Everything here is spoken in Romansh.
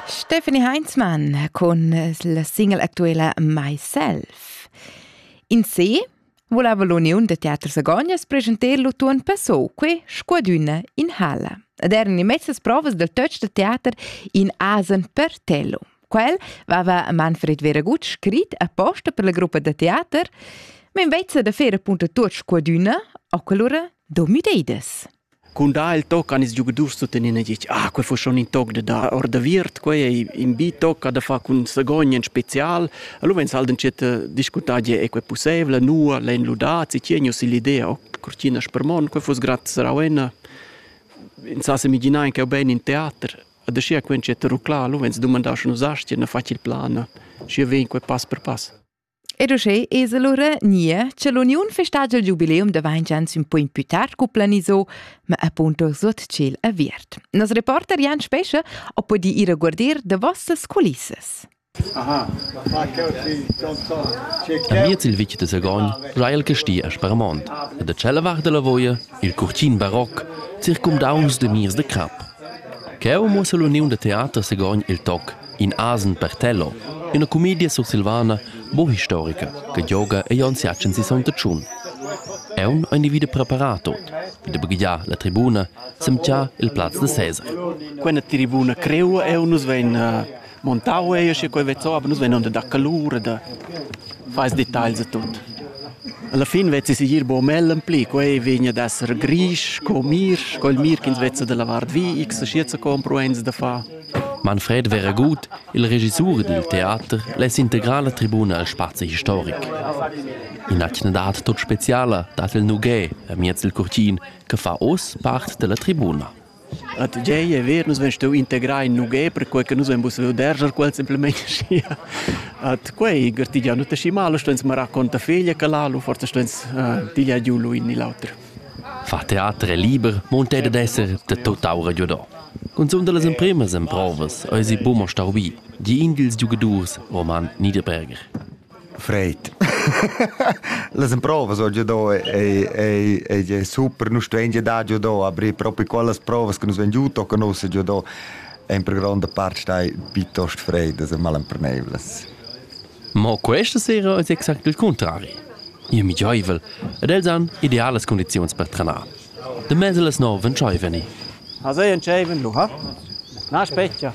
Stephanie Heinzmann con la single actuela Myself. In se voleva l'Uniun de Teatr Sagognas presentar l'utuon passò que scuadüna in halla. Ed erano immensas provas del touch de teater in Asen per Tello. Quel aveva Manfred Veragut scrit apposta per la gruppa de teater, ma invece de faire appunto tot scuadüna, o quell'ora do müdeides. Cun dar il toc han ils giugadurs tuttenina ditg ah, quel fa schon in toc da dar or da viert, quei ei in bi toc che ha da far cun Sagogn en special. Allora vegn Salden tschet discutar gie è quei pusseivel, nua l'ein ludats, si tien jeu l'idea, oh, cortina spermon, quei fuss gratt sarauena. Ins sa semiginar in cheu bein in teater. Da scia quen tschet ruclar, allora vegn dumandar schon usastia, ne facil plan. Schi vegn quei pass per pass. Ed uschè es lura gnir cha l'uniun festagia il giubileum da vainch ans ün po in pü tard cu planiso, ma appunto suot tschel aviert. Nos reporter Jan Spescha ho pudì ir a guardir da vossas culissas. Aha, Amiez il vitg de Sagogn giai el casti a Sparmont e da tschella vart della Voia il curtin baroc circumdauncs de mirs de crap. Cheu muossa l'uniun de teater Sagogn il toc In asen per tello, üna cumedia sursilvana bo historica che gioga ei aunc siachen si Sogn Tschun. Aun ein vide preparat ot, vide baghiar la tribuna, semtgia il plaz de Cesar. Quella tribuna creua e nus vein uh, montau e sche quei vezzo, aber nus vein onda da calura da fais details a tut. Alla fin vezzi si gir bo mellen pli, quei vegna ad esser grisch, co mir, col mir ch'ins vezza da lavar vi, x schietza compro eins da fa. Manfred Veraguth, il regissur dil teater, less integrar la tribuna el spazi historic. In'atgna dat tut speciala dat il Nughé amiez il curtin che fa oz part della tribuna. A tgei è vero, nus vens tu integrar in Nughé per quei che nus vens vederger quel semplicemente sia. At quei gertigia nu te si male, stens me racconta figlia che l'alu, forse stens uh, tiglia giù lui in l'altro. Far teater è liber, mo ün tè dad esser da tutt'aura giudà. Cunzunt da las empremas emprovas ais i buca mo stau bi, di in dils giugadurs, Roman Niederberger. Freit. Las emprovas ho giudà ei ei ei super, nus stuein giudar giudà, aber proprio quellas provas che nus vegn giuto che nus giudò ein per gronda part stai piuttosto freid, das sind mal empernevles. Ma questa sera è exact il cuntrari. Io mi giaivel ed els han idealas condizions per trenar. De mese las nove ventschiven i. Ha sei entscheiven lu ha? Na spetga.